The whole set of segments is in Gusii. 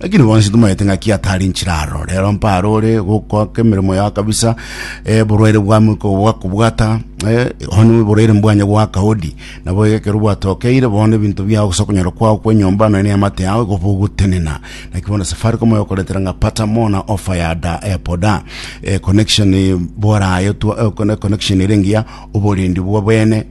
Lakini bonsi tomaete ng'aki atari nchire aro. Rero mpare ore gokoka emeremo yao kabisa, eh, borwaire bwamo iko bwakobwata, eh, onye borwaire mbwanye gwaka hodi, nabo egekero bwatokeire bono ebinto biao gose okonyora kwao kwa enyomba nonya na eamate yao igo bogotenena. Naki bono Safaricom egokoretera ng'a pata more na offer ya da eh, boda, eh, connection eh, bora aye twa- eh, conne- connection ere engiya, oborendi bwa bene,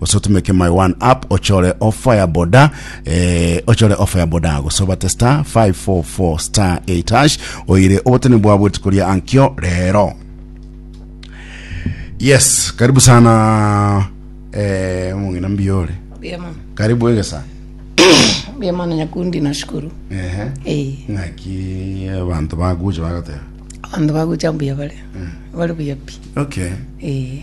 gose otumeke my one app ochore ofaya boda eh, ochore ofaya boda gose obate star 544 star 8 hash oire obotene bwa bwetuko ria ankio rero yes karibu sana eh, mong'ina mbiore Mbuya mono. karibu egesa Mbuya mono nyakundi nashukuru. ehe Eh, ng'aki abantu baguche bagateba abanto bagucha mbuya bare. Bare buya pi. okay Eh,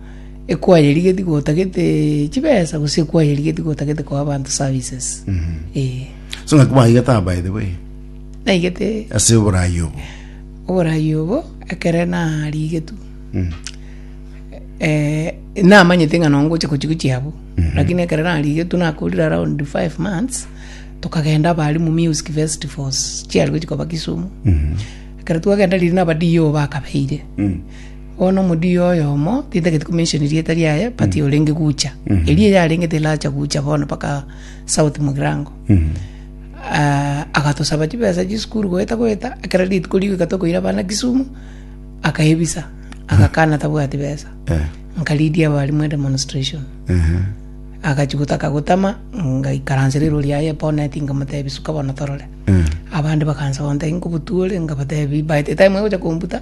ekwayerigetie gotagete chibesa gose ekwayerigetie gotagete koa abanto services eh so ng'aki bwaigete aba by the way naigete ase oborayi obo oborayi obo ekere narigetu eh namanyete ng'a nongo oche gochia gochia abwo lakini ekero narigetu nakorire around five months tokagenda abalimu music festivals chiari gochia koba kisumu ekero twagenda riria naba DO bakabeire Bono omodiyo oyomo, tintagete ko mention erieta riaye, but orenge gucha. Erio yarenge teracha gucha bono mpaka south mogirango. Ah, agatosaba chibesa chisukuru goeta goeta, ekero rituko rigoika tokoira abana Kisumu, akaebisa, agakana tabwati besa. Eh. Nkaridia abarimu edemonstration. Ehe. agachi gotaka gotama ngaikaransa rero riaye boneti nkamotebi suka bono torore Eh. abande bakansa gontebia nkobotuore nkabatebi by the time agocha kombuta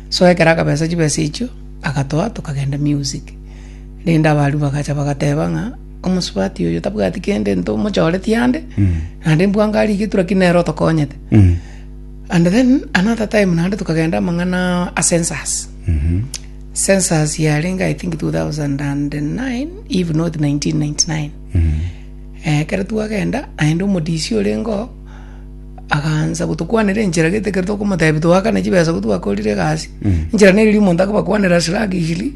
So ekero akabesa chibesa echio, agatoa, tokagenda music. Rende abaria bagacha bagateba ng'a omosubati oyo tabwati kende ntomochoretie ande, naende mbwango aria getura ki nere otokonyete. And then another time naende tokagenda amang'ana a census. Census yarenge I think 2009 if not 1999. Eh, ekero twagenda, naende omodisi orenge oo, Agaancha gotokwanera enchera gete ekero tokomotebia toakane chibesa ko twakorire egasi enchera neri riria omonto akobakwanera ase ragishiri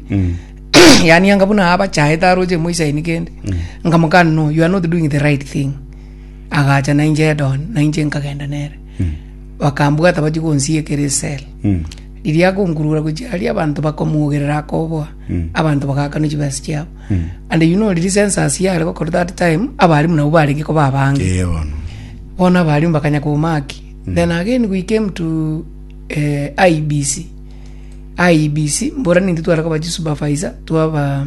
yaani anga buna abachaete aroche emoisaini kende nkamokana no you are not doing the right thing agacha nainche head on nainche nkagenda nere bakambwata bachia gonsiekera esel riria akonkurura gochia aria abanto bakomogerera akoboa Mm. abanto bagakana chibesa chiabo mm. and you know riri census yare gokora that time abarimu nabo barenge koba abange eh, bona abarimu bakanya kumaki mm. then again we came to uh, eh, IBC IBC mbora nintu twara koba supervisor twaba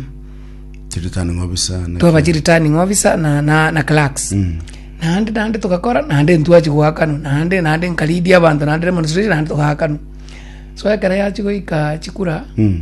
returning officer twaba returning officer na na, na clerks mm. nande nande tukakora nande ntwachi gwakano nande nande nkalidia abantu nande demonstration nande tukakano so ekara yachi goika chikura mm.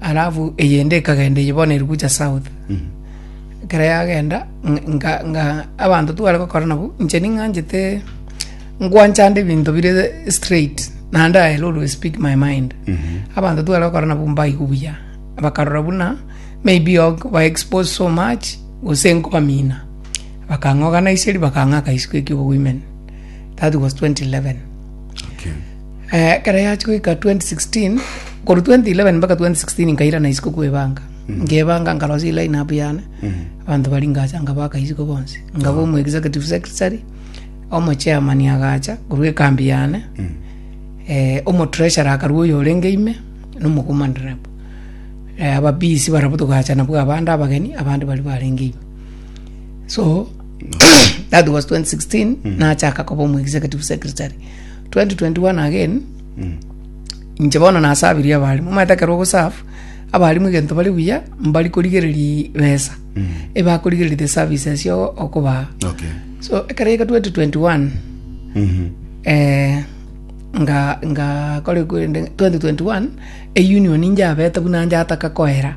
Alafu eyende ekagenda eye bono eri gocha south ekero yagenda ng- nga nga abanto tware gokora nabo inche ning'anchete ngwanchande ebinto bire straight naende I will always speak my mind abanto tware gokora nabo mbaigwe buya bakarora buna maybe ok ba exposed so much gose nkobamina bakang'oganiseri bakang'aka eisiko ekio obowomen that was 2011 Eh, ekero yachi goika 2016 korwa 2011 mpaka 2016 nkairana isiko kwebanga nkebanga nkarosia iline up yane abanto bari ngacha nkabaka isiko bonsi nkaba omu executive secretary omo chairman agacha korwa ekambi yane eh, omo treasurer akarwa oyo orenge ime nomokomanderebo eh, ababisi barabwo togacha nabwo abande abageni abande bari barenge ime so that was 2016 nachaka koba omu executive secretary 2021 again inche bono nasabirie abarimu omanyete ekero ogosafu abarimu egento bare buya mbari korigereria besa ebakorigereria the services yo okobaa Okay. so ekero yaika 2021 Mhm. eh, nga nga kore kwende 2021 eunion injabete buna njataka koera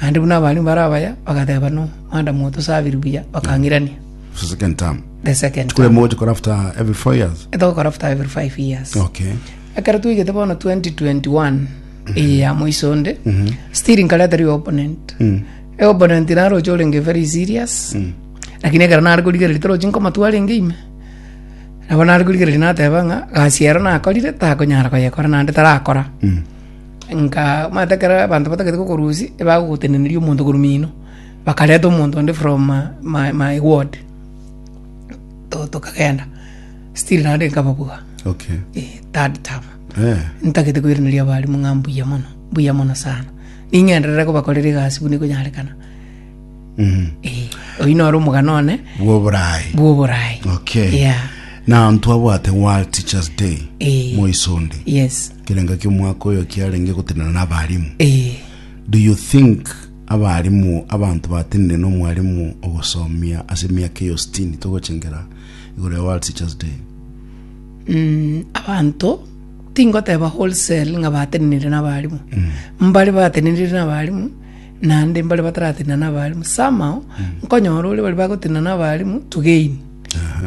Naende buna abarimu bare abaya bagateeba nomwadamu oo tosabiri buya, bakang'irania. It's the second term. The second term. Kule mogoche kora after every four years. Etogokora after every five years. Okay. Ekero twaigete bono 2021 eye ya moiso onde, still nkareta ri opponent. E opponent naro oche orenge very serious. Lakini ekero nare korigereria torochi nkomatwara enge ime. Nabo nare korigereria nateba ng'a gasi ero nakorire takonyara koyekora naende tarakora. Ng'a omanyete ekero abanto batagete kokorusia, ebagogoteneniria omonto korwa mino, bakareta omonto onde from ma ma my ward, to tokagenda, still naende nkaba buya, Okay. eh, third term. Eh. ntagete koiraneria abarimu ng'a mbuya mono mbuya mono sana ning'enderere kobakorera egasi buna ekonyarekana Mhm. Eh, oyio noro omogano one Bw'oboraai. bw'oboraai Okay. yeah. Now ntwabwate World Teachers Day Eh. moisonde. yes Ekerengo ki'omwaka oyo kiarenge gotenena n'abarimu. Eh. Do you think abarimu abanto batenire n'omwarimu ogosomia ase emiaka eyo sitini togochengera igoro ya World Teachers Day? Mm, abanto tingoteba wholesale ng'a batenenire n'abarimu. Mbare batenenire n'abarimu naende mbare bataratenena n'abalimu. Somehow, nkonyora ore bari bagotenena n'abalimu to gain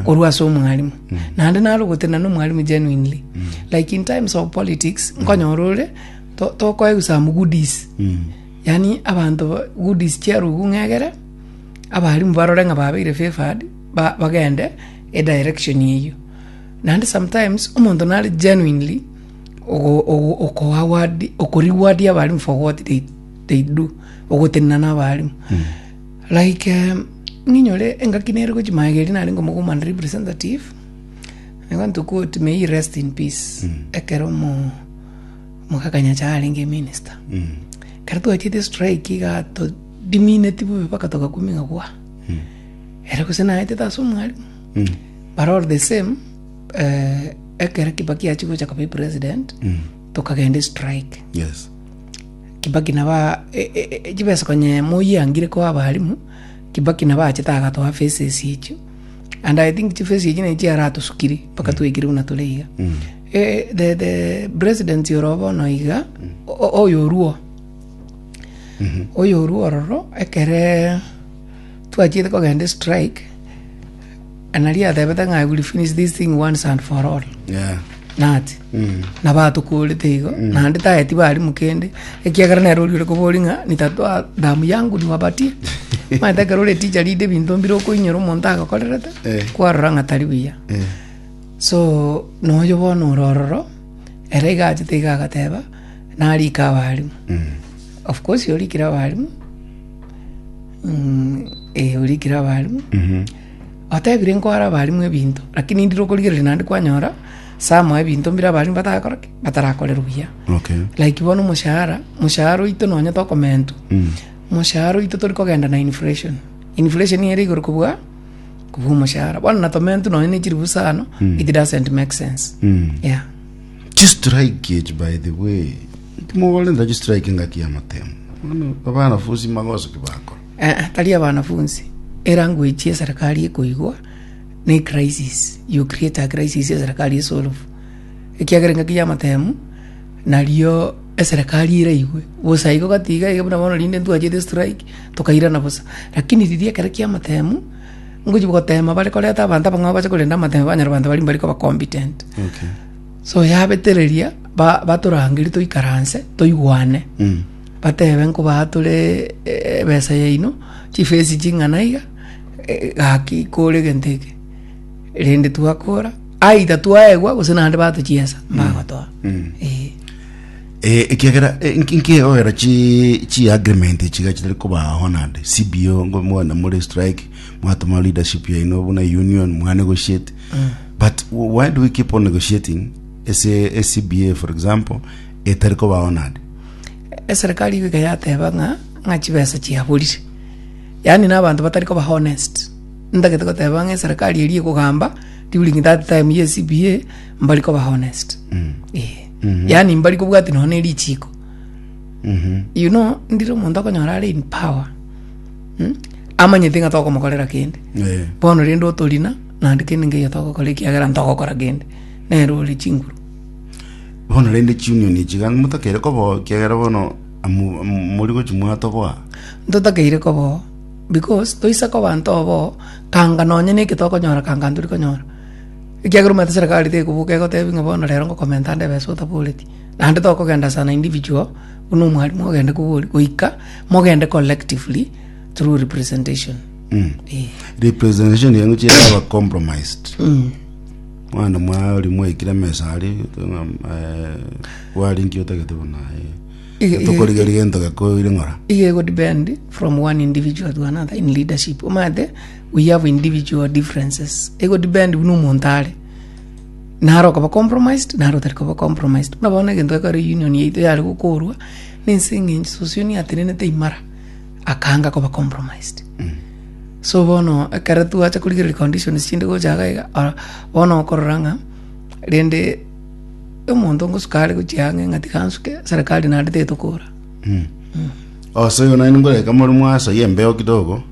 korwa ase omwalimu. Naende nare ogotenena n'omwalimu genuinely. Like in times of politics, nkonyora ore to- tokoegwa some goodies. Yaani abanto ba- goodies chiarubu ng'egere, abalimu barore ng'a babeire favoured, ba- bagende edirection eyio. Naende sometimes, omonto nare genuinely ogo- ogo- okoaward- okoreward abalimu for what they. they do, ogotenena na abaalimu like em, ninyore engaki nere gochi maega eria narenge omoka omwando representative I want to quote may he rest in peace ekero omo omoka kanyacha arenge minister ekero twachete strike iga todimineti bobe mpaka togakumia gwa ere gose naetete ase omwalimu but all the same eh, ekero kibaki achigocha koba epresident tokagenda estrike yes Kibaki naba e, e, e, e, chibesa konye moyiangire koa abalimu, Kibaki naba achete agatoa fesa esi echio, and I think chifesa echi nachi chiaratosukirie mpaka twaikire buna tore iga. Eh, the, the president oro bono iga, o- oyo oruo, oyo oruo ororo, ekere twachiete kogenda strike, Nari atebete ng'a I will finish this thing once and for all. Yeah. Nati. Mm. Na batokorete igo, naende taeti barimu kende, ekiagera nere oriore kobori ng'a nitatoa damu yangu niwabatie. Maete ekero ore teacher ride ebinto mbire okoinyora omonto agokorerete, Eh. kwarora ng'a tari buya. Eh. so noyo bono ore ororo ere iga achete iga agateba narika abarimu Mm. Of course orikire abarimu Mm, eh, orikire abarimu otebire nkwara abarimu ebinto lakini ndire okorigereria naende kwanyora sama ebinto mbire abarimu batagakora ki batarakore buya okay like bono omoshahara omoshahara oito nonya tokomentu Mm. omoshahara oito tori kogenda na inflation inflation ere igoro kobua kobua omoshahara bono natomentu nonya ne chiribu sano it doesn't make sense Mm. yeah Chi strike echi by the way. Timogorenta chi strike engaki ya motemo. Bono abana fusi magoso ki bakora. Eh, eh, tari abanafunsi elanguage ye serikali ekoigwa ne crisis you create a crisis ye serikali esolve ekiagera engaki ya matemu nario eserikali eraigwe bosa igo gatiga iga buna bono rinde ntwachete strike tukairana bosa lakini riria ekero kia matemu ngochia goteema bare koreta abanto abang'ao bache korenda amatembe banyarwanda baria mbare koba competent Okay. so yabetereria ba- batorangeria toikaranse toigwane Mm. batebe nkoba tore eh, ebesa yaino chifesi ching'ana iga eh, gaki kore egento eke rende twakora aida twaegwa gose naende batochiesa mbagotoa Mm. Eh. Eh, ekiagera eh, nki- nkigegogera chi chi agreement chiga chitari koba honored CBO ngo mwana muri strike mwatuma leadership yaino buna union mwa negotiate but w- why do we keep on negotiating ese a CBA for example etari koba honored eserikali igo iga yateba ng'a ng'a chibesa chiaborire yaani na abanto batari koba honest ntagete goteba ng'a eserikali eri ekogamba during that time ye cba mbari koba honest Eh. yaani mbari kobwati nonya ne richiko you know ndire omonto okonyora are in power mm? amanyete ng'a tokomokorera kende Eh. bono rende otorina naende kende ngeyo togokora ekiagera ntogokora kende nere ore chinguru bono rende chiunion echi gaki motakere kobo kiagera bono amu- amu- mori gochi mwatoboa ntotakeire kobo because toise koba ntobo kanga nonya neke tokonyora kanga ntori konyora Ekiagera omanyete serikali tekobuka egotebi ng'a bono rero ngokomenta ande ebesa otaboreti, naende tokogenda as an individual buna omwarimu ogende kobori, goika mogende collectively through representation. Eh. representation yenu chiraba compromised mwana mwaye ori mwaikire emesa ari wari nki otagete buna Iga- iga- tokorigeri gento gekoire ng'ora Iga ego depend from one individual to another in leadership. Omanyete we have individual differences ego depend buna omonto are naro okoba compromised naro otari koba compromised buna bono egento ekero union yaito yare gokorwa na ense eng'encho sosion yatenenete imara akanga koba compromised so bono ekero twacha korigereria conditions chinde gocha iga iga ah, bono okorora ng'a rende omonto ngosuka are gochia ang'e ng'a tiga nsuke serikali naende tetokora osoyo naende ngoreka more mwasoyia embeo kidogo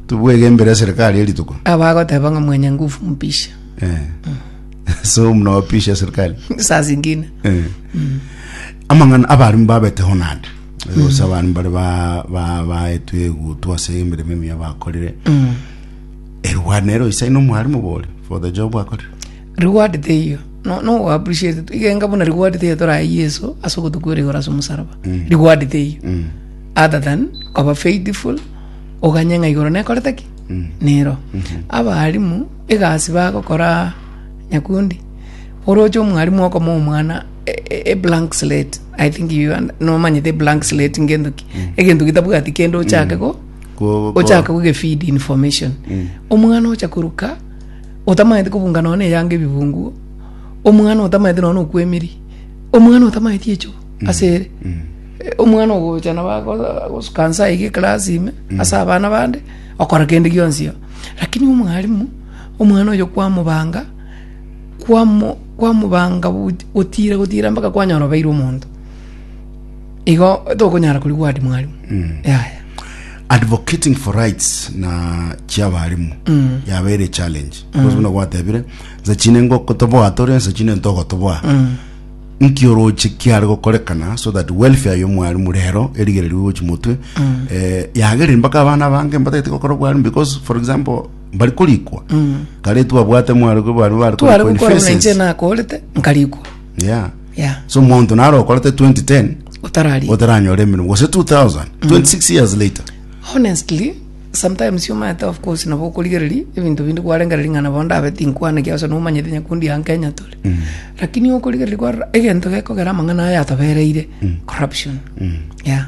Tobwegenbere eserikari ye rituko. Abagoteba ng'a mwenye nguvu mpishe. Eh. So mnawapisha eserikari. Saa zingine. Eh. Amang'ana abarimu babeteho nande. Gose abarimu bare ba ba baetwe egutu ase emeremo emiya bakorire. Erwa nero isa ino mwarimu bore for the job akorire. Reward teiyo. No, no we appreciate it. Igenga buna reward teiyo torae Yeso ase ogotokwera igoro ase omosalaba. Reward teiyo. Other than koba faithful, oganye ng'a igoro nekorete ki? Nero. Abaalimu egasi bagokora nyakundi, oroche omwalimu okomoa omwana e- e- e blank slate, I think you und- nomanyete e blank slate ngento ki, egento gitabwati kende ochake go Ko- ko- ochake kogefeed information omwana ocha koruka otamanyete kobunga nonya na eyanga ebibunguo omwana otamanyete nonya na okwemiri omwana otamanyeti echuo asere Omwana ogocha nabo ago- agosuka nse aige eklasi ime ase abana bande okora kende gionsi iga. Lakini omwalimu omwana oyo kwamobanga kwamo kwamobanga goch- gotira gotira mpaka kwanyora obeire omonto igo tokonyara kori word mwalimu yaya. advocating for rights na chiabarimu yabeire challenge because buna gwatebire nsa chine ngokotoboa tore nsa chine ntogotoboa Nki oroche kiare gokorekana so that welfare y'omwarimu rero erigererwe gochi motwe eh, yagereri mpaka abana bange mbatagete gokora obwarimu because for example bari korikwa kare twabwate mwarimu bari bari tware korikwa in gokora buna phases. inche nakorete nkarikwa yeah ya so monto naro okorete 2010 otarari otaranyora emirimo gose 2000 26 years later honestly Sometimes omanyete of course nabo okorigereria ebinto binde kwarengereria ng'a nabo ndabe tinkwaneti ase nomanyete nyakundi anga Kenya tore lakini okorigereria kwarora egento gekogera amang'ana aya atobereire corruption yeah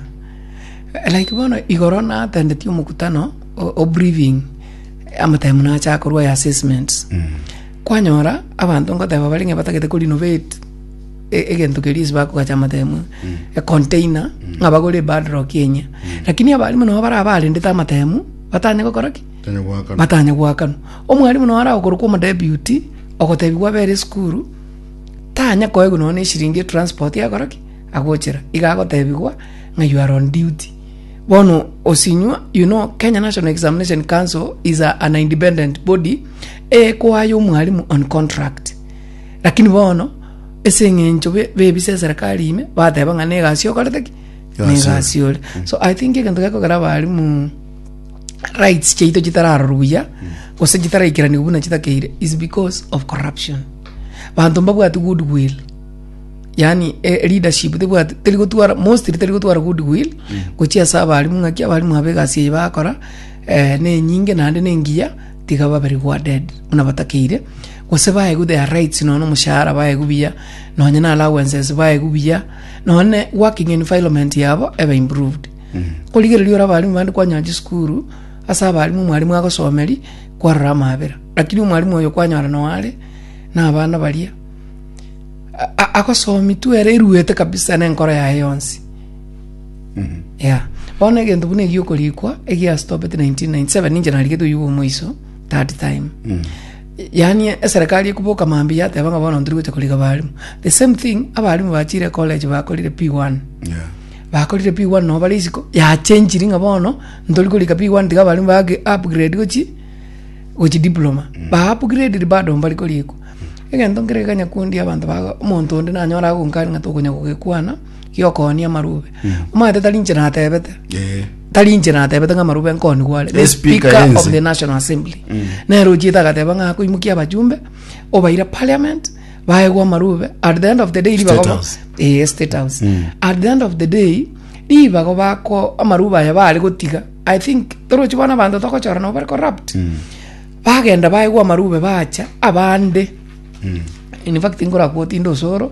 like bono igoro natendetie omokutano o- o briefing amataimu nacha akorwa aya assessments kwanyora abanto ngoteba bare ng'a batagete korinovate e- egento keria ase bakogacha amatemo econtainer ng'a bagore epadrock enye lakini abarimu nabo bara barendete amatemu batanye gokora ki Tanya gwakana. batanye gwakanwa omwarimu nao aragokorokwa omodebuti ogotebiwa abere esukuru tanya koegwa nonye na eshiringi etransport agokora ki agochera iga agotebigwa ng'a you are on duty bono osinywa you know kenya national examination council is a, an independent body ekoaya omwarimu on contract Lakini bono, ase eng'encho be- b'ebisa eserekari ime, bateba ng'a na egasi okorete ki? Na Egasi egasi ore. So I think egento gekogera abarimu rights chiaito chitararorwa buya, gose chitaraikeraniwa buna chitakeire is because of corruption. Banto mbabwati good will, yaani eh, leadership tebwati teri gotwara mostly teri gotwara good will gochia ase abarimu ng'aki abarimu aba egasi eye bakora eh, nenyinge naende nengiya tiga baberigwa dead buna batakeire gose baegwe their rights nonya omoshahara baegwe buya nonya na allowances baegwe buya nonya working environment yabo ebe improved korigereria ore abarimu bande kwanyora chisukuru ase abarimu omwarimu agosomeri kwarora amabera lakini omwarimu oyo kwanyora noare na abana baria a- a- agosomi tu ere eruete kabisa na enkoro yaye yonsi Yeah. Bono egento buna egio okorikwa egia stopet 1997 ninche narigete oyugo omoiso that time yaani eserikali ekuboka mambi yateba ng'a bono ntorigocha koriga barimu the same thing abarimu bachire college bakorire p1 Yeah. bakorire p1 no bare isiko yachenchiri ng'a bono ntori korika p1 tiga abarimu bage upgrade gochi gochi diploma ba upgraded bado mbari korikwa egento nkerekanya kundia abanto bago omonto onde nanyora agonkania ng'a tokonya gogekwana giokooni amarube omanyete tari inche natebete Eh, tari inche natebete ng'a amarube nkoonigwe are the Eh, speaker speaker ense. of the national assembly nere ochiete agateba ng'a akoimokia abachumbe obaire parliament baegwa amarube at the end of the day ribago ba- House. Eh, state house at the end of the day ribago bako amarube aya baare gotiga i think torochi bono abanto togochora nabo bare corrupt bagenda baegwa amarube bacha abande in fact nkorakwa otinde osoro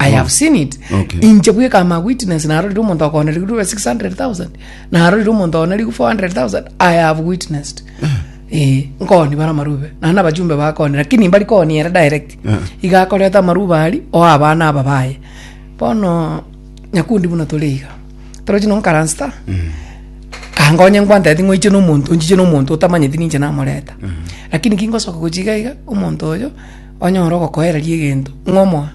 I have seen it. Okay. Inche bweka am a witness narorire omonto akonerigwe ribe 600,000. Narorire omonto akonerigwe 400,000. I have witnessed. Eh, nkoni bara marube. Nana bajumbe bakoni lakini mbari koni era direct. Eh. Iga akoreta maruba ari o abana aba baye. Bono nyakundi buna tore iga. Tore chino nkaransta. kangonya ngwantete ng'oiche nomonto nchiche nomonto otamanyeti ninche namoreta lakini kingosoka gochiga iga omonto oyo Onye ore ogokoereria egento ng'a omoa,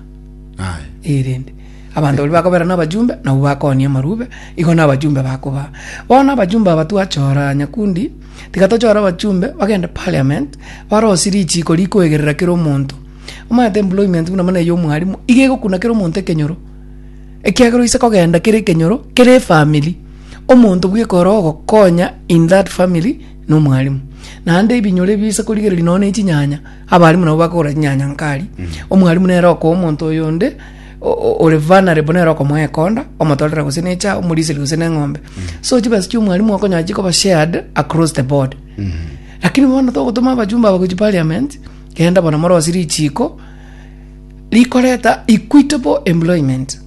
Aye. ee, rende abanto baria bakobera nabachumbe, nabwo bakooonia amarube, igo nabachumbe bakobaa. Bono abachumbe aba twachora nyakundi, tiga tochore abachumbe bagende parliament, barosie richiiko rikoegerera kera omonto. Omanyete employment buna buna eya omwarimu, iga egokuna kera omonto ekenyoro, ekiagera oise kogenda kera ekenyoro, kera efamiri, omonto bweka ore ogokonya in that family, na omwarimu. Naende ebinyoro ebi oise korigereria nonya na echinyanya. Abalimu nabo bakogora chinyanya nkari. Omwalimu nere okoa omonto oyonde o- o- ore vulnerable nere okomoa ekonda, omotorera gose ne echa, omoriseri gose neng'ombe. So chibesa chia omwalimu okonyora chikoba shared across the board. Lakini bono togotoma abajumbe aba gochia parliament, genda bono morosie richiko, rikoreta equitable employment.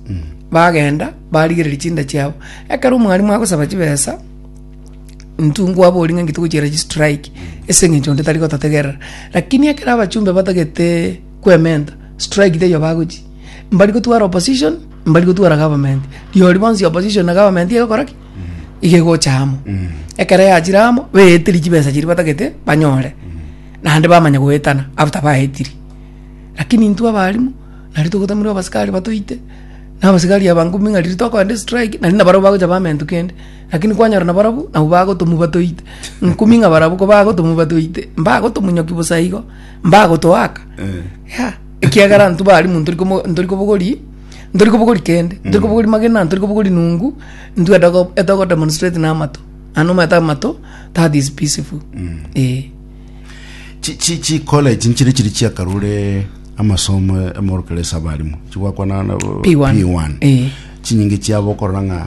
Bagenda barigereria chinda chiabo. Ekero omwalimu agosaba chibesa, Ntungwa abori ng'a ngite gochiera chi strike ase eng'encho onde tari gototegerera lakini ekero abachumbe batagete kwementa strike teiyo bagochia mbari gotwara opposition mbari gotwara government riori bonsi opposition na government egokora ki iga egocha amo ekero yachire amo baeteria chibesa chiria batagete banyore naende bamanya goetana after baetiri lakini intwe abaarimu nari togotamerwa abasikari batoite na abasikari abange buna riria tokoenda estrike naende nabarabwo bagocha bamentu kende. Lakini kwanyora nabarabwo nabwo bagotomuba toite, nkumi ng'a barabwo kobagotomuba toite, mbagotomonyoki bosa igo, mbagotoaka. Yea, ekiagera intwe bari mu ntori komo- ntori kobogori, ntori kobogori kende, ntori kobogori magena, ntori kobogori nungu, intwe etoko- etogo demonstrate na amato. Naende omanyete amato, that is peaceful. Eeh. Chi- chi- chicollege nchire chiri chiakarure amasomo amorokere ase abarimo chigwakwana na P1. P1. Eh. chinyinge chiabo okorora ng'a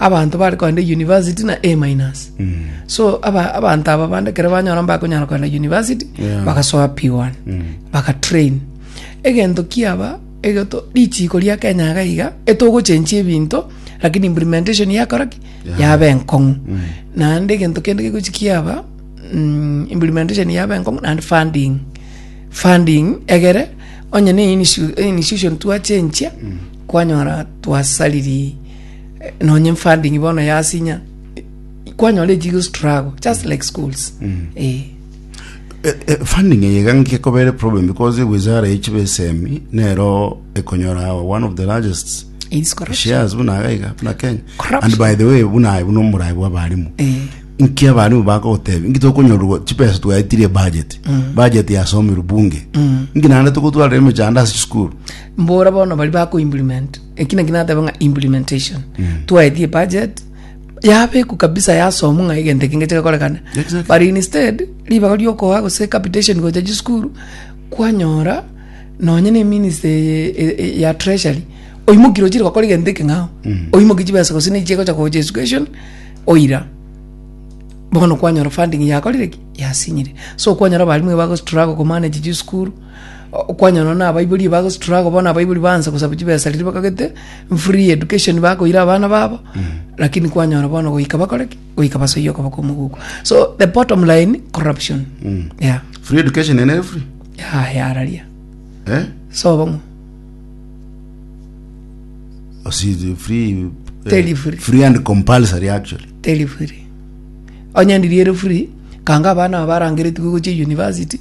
Abanto bare kogenda university na A minus. So aba abanto aba bande kere banyora mbakonyara kogenda university Yeah. bagasoa P1. Bagatrain. Egento kiaba egeto richiko ria Kenya iga iga etogochenchi ebinto lakini implementation yakora ki yabe enkong'u. Naende egento kende gegochi kiaba mm, implementation yabe enkong'u naende funding funding egere onye ne inisu- institution twachenchia kwanyora twasariri nonye funding bono yasinya kwanyora ejigo struggle just like schools eh Eh, eh, funding eye iga nkekobere problem because wizara yechibe esemi nero ekonyora one of the largest it's correct shares buna aga iga buna kenya Corruption. and by the way buna aye buna omorai bwa abarimu eh nki abarimu bagotebi nki tokonyorwa chipesa twaetirie budget budget yasomirwe bunge nki nande togotwarire emechando ase chisukuru mbora bono bari bako implement Eki naki nateba ng'a implementation. Twaetie budget yabekwa kabisa yasomwa ng'a egento eki ngeche gekorekane. Exactly. But instead ribaga riokoa gose capitation gocha chisukuru kwanyora nonye ne minister eye- e- e- ya treasury oimoki rochire gokora egento eke ng'ao. Oimoki chibesa gose nigo chigocha gocha education oira. Bono kwanyora funding yakorire ki? Yasinyire. So kwanyora abalimu bago struggle ko manage chisukuru. Okwanyora na abaibori bago struggle bono abaibori baansa gosaba chibesa riria bakagete free education bakoira abana babo lakini kwanyora bono goika bakore ki goika basoyie okoba kwa omogugu so the bottom line corruption yeah free education ene free yeah yararia eh so bomo Osi- free eh, Tell you free. free and compulsory actually teri free onye ndiri ere free kanga abana aba barangeretigwe gochia university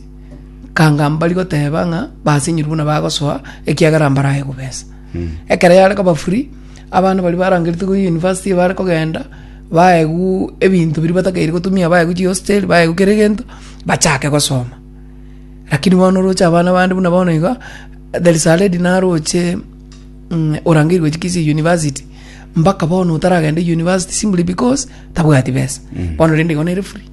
kanga mbari goteba ng'a basinyirwe buna bagosoa ekiagera mbarae kobesa ekero yare koba free abana baria barangeretie koyia university bare kogenda baegwu ebinto biria batakeire gotumia baegwu chihostel baegwu kera egento bachake gosoma lakini bono oroche abana bande buna bono iga there is a lady naroche ng'a orangeirwe chikisii university mbaka bono otaragende university simply because tabwati besa bono rende igo nere free.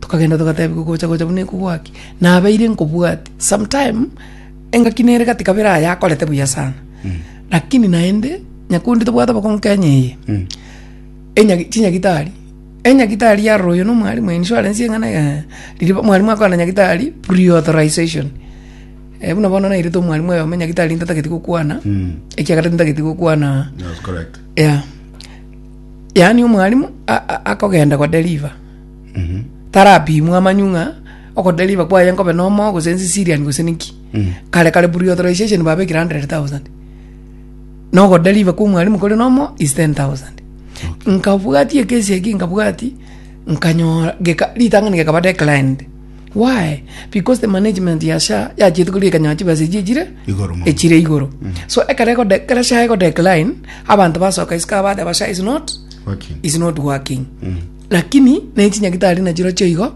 Tokagenda togateebia kogocha gocha buna iko gwaki nabeire nkobwati some time engaki nere gati kabere aye akorete buya sana lakini naende nyakundi tobwate obokong'u kenya eye enyagi chinyagitari enyagitari yarora oyo no mwarimu insurance eng'ana eeh riria bo mwarimu akogana nyagitari pre-authorisation eh buna bono nairete omwarimu oyomo nyagitari ntatageti gokwana ekiagera tintageti gokwana That's correct. yeah yaani omwarimu a- a- akogenda ko deliver tarapimwe amanyu ng'a ogodeliver kwaye nkobe nomo gose nse siriani gose ninki kare kare pre-authorization babekire hundred thousand na ogodeliver kwa omwalimu kore nomo is ten thousand nkabwati ekesi eki nkabwati nkanyora geka ritang'ani gekaba declined why because the management ya sha yachiete koria ekanyaa chibesa echi echire Igoro mono. echire igoro so ekero egode ekero sha egodecline abanto basoka isiko abateba sha is not Working. is not working Lakini nechinyagitari nachirochio igo,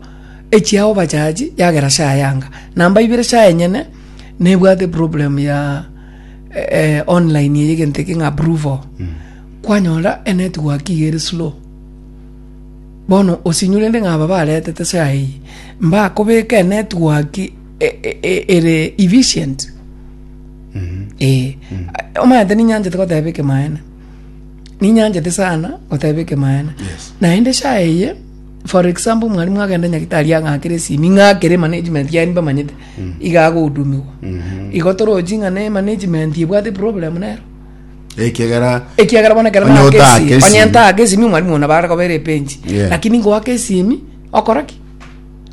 echia obachaji yagera share yanga namba ibere share enyene nebwate problem ya eh, online eye egento eke ng'a approval kwanyora enetwork iga ere slow bono osinyurende ng'a aba baretete share eye mbakobeka enetwork e- e- e- ere efficient eh omanyete ninyanchete goteba ekemaene ninyanchete sana goteba ekemaene Yes. naende shaha eye for example mwarimu agende nyagitari ang'akere esimi ng'akere management yaye mbamanyete iga agohudumigwa igo torochi ng'a ne management ebwate problem nero ekegera ekiagera bono ekero Onye nake otake esimi esimi. onye ntake esimi mwarimu ona bare kobera epenji Yeah. lakini ngoaka esimi okora ki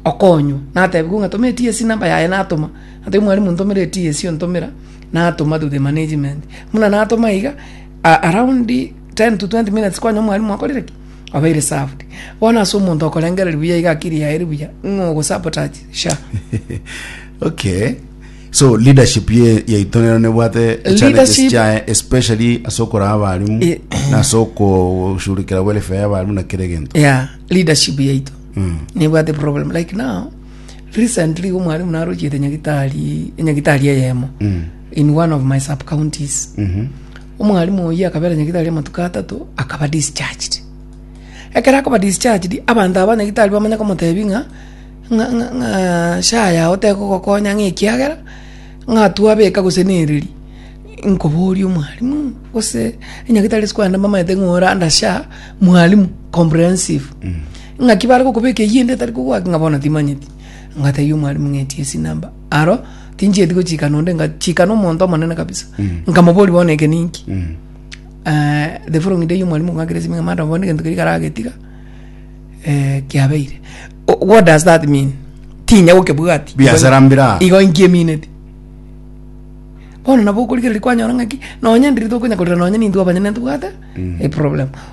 okonywa natebi kung'a toma ets namba yaye natoma natebi mwarimu ntomera ets ontomera natoma to the management muna natoma iga a- around 10 to 20 minutes kwanya omwalimu akorire ki abaire served bono ase omonto okorengereria buya iga akiri yaye eri buya ng'a ogosabotage sha okay so leadership ye yaito nero nebwate challenges Leadership- chaye especially ase okoraa abarimu Eh. na ase okoshughulikira welfare y'abarimu na kera egento yeah leadership yaito Mm. nebwate problem like now recently igo mwaremo narochiete nyagitari enyagitari eyemo Mm. in one of my sub counties Mhm. omwarimu oyi akabera nyagitari amatuko atato akaba discharged ekero akoba discharged abanto aba nyagitari bamanya komotebi ng'a ng'a ng'a- ng'a sha yago tekogokonya ng'a ekiagera ng'a twabeka gose nereri nkoboria omwarimu gose enyagitari ase kwenda mbamaete ng'a ore under sha mwarimu comprehensive Ng'aki bare gokobeka eyio ende etari kogwaki ng'a bono timanyeti? Ngatebia omwarimu ng'a echi esi number. Aro tinchieti gochikana onde ngachikana omonto omonene kabisa. Nkamoboria bono eke ninki? Eh, the following day omwarimu ng'akera esimi ng'a madam bono egento keria karagetiga eh, kiabeire. O- What does that mean? Tinya gokebwati. Biasara mbira. Igo inki emineti? Bono nabo okorigereria kwanyora ng'aki, nonye ndiri tokonya korera nonye nintwe abanyene ntobwate eproblem.